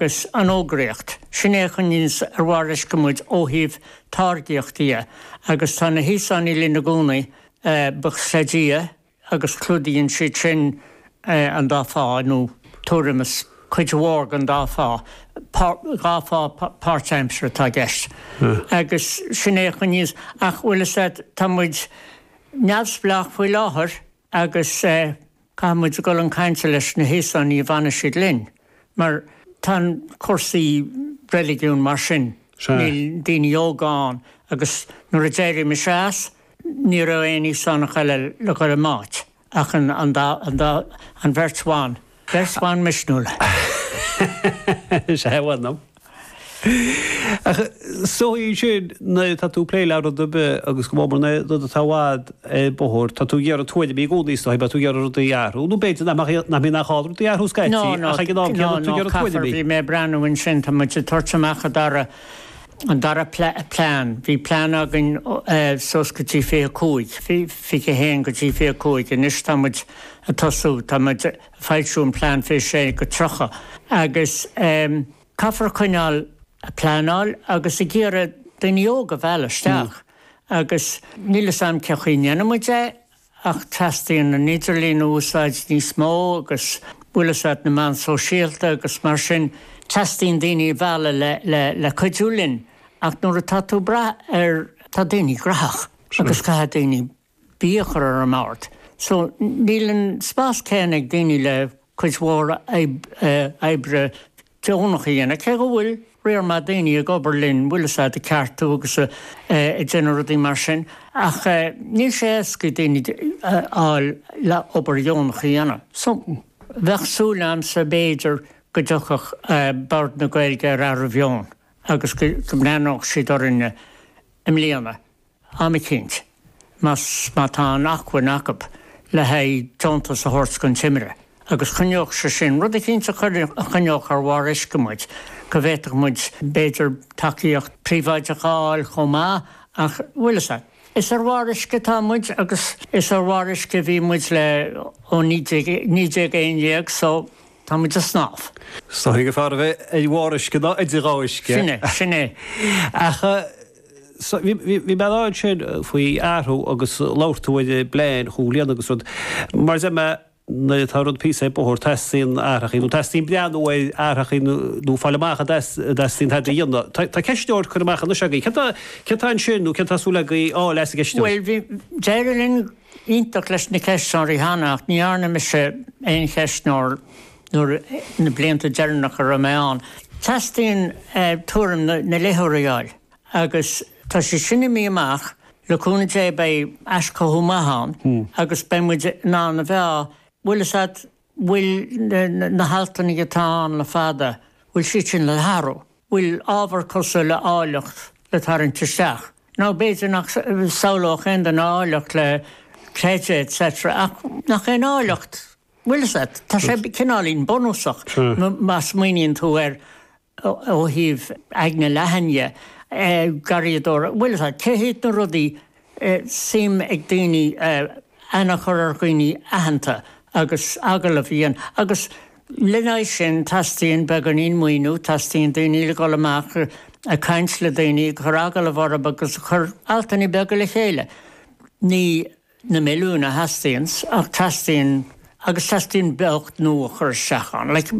Is an fhógraíocht, sin é a choinníonns ar bharr uisce muid ó thaobh táirgíochta dhe, agus tá na hÍosánaigh linn i gcónaí, buíochas le Dia, agus clúdaíonn siad sin an dá phá, nó tuairim is cuid mhór den dá phá, dhá phá páirt-aimsire atá i gceist, agus sin é a choinníonn, ach bhfuil fhios a'd, tá muid neamhspleách faoi láthair agus. Caithfidh muid a dhul chun cainte leis na hÍosánaigh go bhfanfaidh siad linn, mar tá an cúrsaí reiligiún mar sin, Sea. níl daoine óga ann, agus nuair a d'éirigh mise as, ní raibh aon Íosánach eile le dhul i m'áit, ach an, an dá, an dá, an bheirt bhan, beirt bhan misniúla. Sea, bhfuel, nó. Ach is dóigh ansin nuair atá tú ag plé le rud ar bith agus go mór mór nuair rud atá i bhfad ar bóthar, tá tú ag iarraidh tuairimí i gcónaí is dóigh, beidh tú ag iarraidh rudaí a athrú, nó b'fhéidir nach mbeadh, nach mbíonn nach gá rudaí a athrú scaití ach ag an am céanna tá tú ag iarraidh tuairimí. Bhí mé ag breathnú ansin, tá muid ag tabhairt amach an dara, an dara plean, bhí plean againn suas go dtí 25, 21 go dtí 25, anois tá muid ag tosú, tá muid, Foilsiú an Plean 26 go 30 agus caithfear a choinneáil a pleanáil agus ag iarraidh daoine óga a mhealladh isteach agus níl fhios a'm cén chaoi a ndéanfaidh muid é ach teastaíonn an idirlíon a úsáid níos mó agus bhfuil fhios a'd na meáin sóisialta agus mar sin teastaíonn daoine a mhealladh le cuidiú linn ach nuair atá tú ag brath ar tá daoine graitheach agus caithfidh daoine Bia a chur ar an mbord, só níl an spas céanna ag daoine le cuid mhór oibre deonach a dhéanamh, cé go bhfuil riar maith daoine ag obair linn bhfuil fhios a'd ag ceartú agus ag déanamh rudaí mar sin, ach níl sé éasca daoine a fháil le obair dheonach a dhéanamh. So, bheadh súil a'msa b'fhéidir go dtiocfadh Bord na Gaeilge ar athrú meoin agus go mbreathnódh siad orainne i mbliana. am eicínt, más má tá an acmhainn acu le haghaidh deontas a thabhairt don Timire, agus choinneodh sé sin, rud eicínt a chuir, a choinneodh ar bharr uisce muid, go bhféadfadh muid, b'fhéidir, tacaíocht príobháideach a fháil chomh maith, ach, bhfuil fhios a'd. Is ar bharr uisce atá muid, agus is ar bharr uisce a bhí muid le, ó naoi déag, naoi déag a haon déag, so, tá muid ag snámh. Is dóigh gur fearr a bheith ar bharr uisce ná idir dhá uisce. Sin é, sin é. Ach. Bhí mé ag caint ansin faoi athrú agus labhair tú ar an bplean a chomhlíonadh agus rud. Mar deir mé, nuair atá rud píosa ar bóthar, teastaíonn athrachaí, nó teastaíonn breathnú ar athrachaí nó fáil amach an dteastaíonn tada a dhéanamh. Tá ceistneoir curtha amach anois agaibh. Céard atá ansin, nó céard atá súil agaibh a fháil as an gceistneoir? Bhuel, bhí, d'éirigh linn iontach leis na ceistneoirí cheana ach ní dhearna mise aon cheistneoir. ina blianta deireanacha a raibh mé ann. Teastaíonn tuairim na léitheoirí a fháil agus tá sé sin imithe amach, le cúnamh Dé beidh aischothú maith ann agus beidh muid in ann a mheá, bhfuil fhios a't, bhfuil na haltanna atá ann le fada, bhfuil siad sin le hathrú? Bhfuil ábhar cosúil le áilleacht le tarraingt isteach? Nó b'fhéidir nach samhlódh aon duine áilleacht le creideamh etc. ach nach é an áilleacht Bhuel, is ea, tá sé cineáilín bunúsach má smaoiníonn tú air ó thaobh aigne leathan dhe, garraíodóir, bhuel, is ea, cé hiad na rudaí is suim ag daoine, aithne a chur ar dhaoine aitheanta agus agallamh a dhéanamh agus lena aghaidh sin teastaíonn beagáinín maoiniú, teastaíonn daoine le dhul amach ag caint le daoine, ag cur agallamh orthu agus a cur altanna beaga le chéile. Ní. na milliúin a theastaíonns, ach teastaíonn, agus teastaíonn beocht nua a chur isteach ann. Like,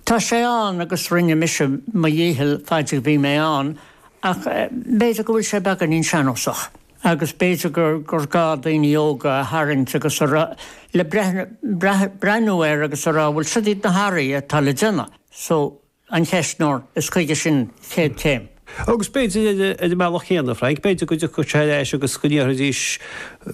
tá sé ann agus rinne mise mo dhícheall faid a bhí mé ann, ach b'fhéidir go bhfuil sé beagáinín sean-nósach, agus b'fhéidir gur gur gá daoine óga a tharraingt agus a rá, le breathnú air agus a rá, bhuel, siod iad na hathraithe atá le déanamh. So. an ceistneoir, is chuige sin chéad chéim. Agus b'fhéidir ar an mbealach céanna, a Frank, b'fhéidir go dtiocfadh sé ar ais agus go ndéarfaidís,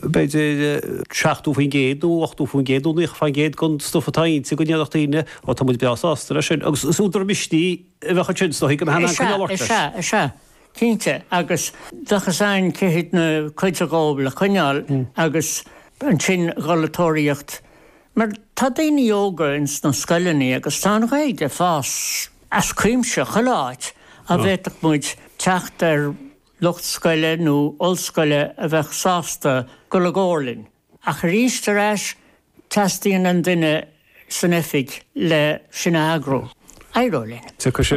b'fhéidir, 70% nó 80% nó 90% den stuff atá inti, go ndéarfadh daoine, Ó, tá muid breá sásta leis sin. Agus is údar misnigh a bheadh ansin, is dóigh, go mbeadh an ancaire ag labhairt leis. Is ea, is ea, cinnte. Agus bheadh sé in ann cuid acu dhóibh le coinneáil agus ansin dhul ag tóraíocht. Mar tá daoine óga ins na scoileannaí agus tá an Ghaeilge ag fás as cuimse chuile áit a bhféadfadh muid teacht ar lucht scoile nó ollscoile a bheadh sásta dul i gcomhar linn. Ach aríst ar ais teastaíonn an duine san oifig le sin a eagrú. Éireoidh linn.